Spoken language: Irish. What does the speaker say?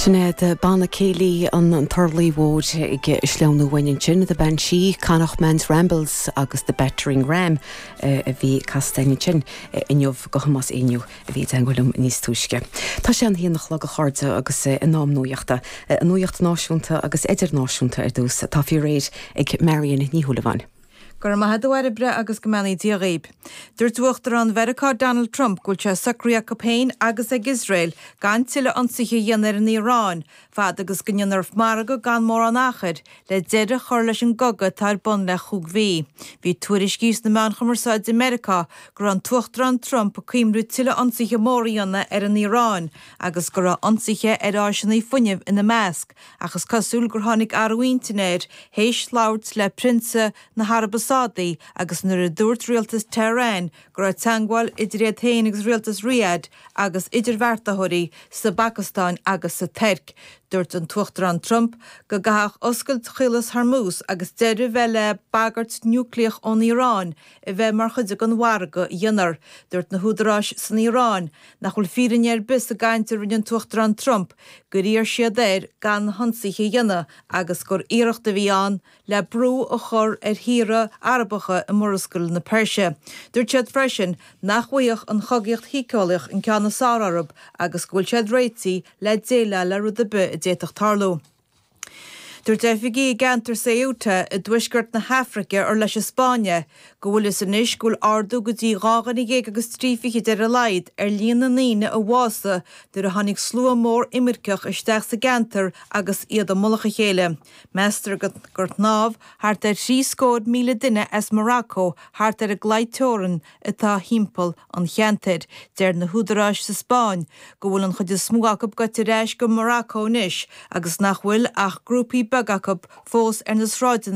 Sinéad Banna Céilí an Turlaigh Mhóir ag sleamhnú uainn ansin, The Banshee, Connachtman's Rambles agus The Battering Ram eh, a bhí casta a'inn ansin eh, inniu go Thomás Éinniú a bhí ag teangmháil linn níos túisce. Tá sé a haon a chlog a chairde agus eh, in am nuaíochta, eh, an nuaíocht náisiúnta agus idirnáisiúnta ar dtús, tá sí réidh ag Marian Ní Shúilleabháin. Go raibh maith a't a Bhairbre agus go mbeannaí Dia dhaoib. Dúirt Uachtarán Mheiriceá Donald Trump go bhfuil sé socraithe acu féin agus ag Iosrael gan tuilleadh ionsaithe a dhéanamh ar an Iaráin fad agus go ndéanfar margadh gan mórán achair le deireadh a chur leis an gcogadh atá ar bun le cúig mhí. Bhí tuairiscí sna meáin chumarsáide i Meiriceá go raibh an tUachtarán Trump ag cuimhniú tuilleadh ionsaithe móra a dhéanamh ar an Iaráin agus go raibh ionsaithe ar áiseanna fuinnimh ina measc. Ach is cosúil gur tháinig athrú intinn air th'éis labhairt le Prionsa na hAraibe Sádaí agus nuair a dúirt rialtas Tehran go raibh teagmháil idir iad féin agus rialtas Riyadh agus idirbheartaitheoirí sa bPacastáin agus sa Tuirc. Dúirt an tUachtarán Trump go gcaithfeadh oscailt Chaolas Hormuz agus deireadh bheith le bagairt niúcleach ón Iaráin a bheith mar chuid den mhargadh a dhéanfar. Dúirt na húdaráis san Iaráin nach bhfuil fírinne ar bith sa gcaint a rinne an tUachtarán Trump. gur iarr siad air gan ionsaithe a dhéanamh agus gur iarracht a bhí ann le brú a chur ar thíortha Arabacha i Murascaill na Peirse. Dúirt siad freisin nach bhfaigheadh an chogaíocht shíceolaíoch an ceann is fearr orthu agus go bhfuil siad réitithe le déileáil le rud ar bith a d'fhéadfadh tarlú. Dúirt oifigigh i gceantar Ceuta i dtuaisceart na hAfraice ar leis an Spáinn é go bhfuil a fhios anois go bhfuil ardú go dtí dhá dhuine déag agus trí fichid ar a laghad ar líon na ndaoine a bhásaigh nuair a tháinig slua mór imirceach isteach sa gceantar agus iad i mullach a chéile. Meastar gur shnámh thart ar thrí scór míle duine as Morocco thart ar an gclaí teorann atá timpeall an cheantair. Deir na húdaráis sa Spáinn go bhfuil an chuid is mó acu goite ar ais go Morocco anois agus nach bhfuil ach grúpaí beaga acu fós ar na sráideanna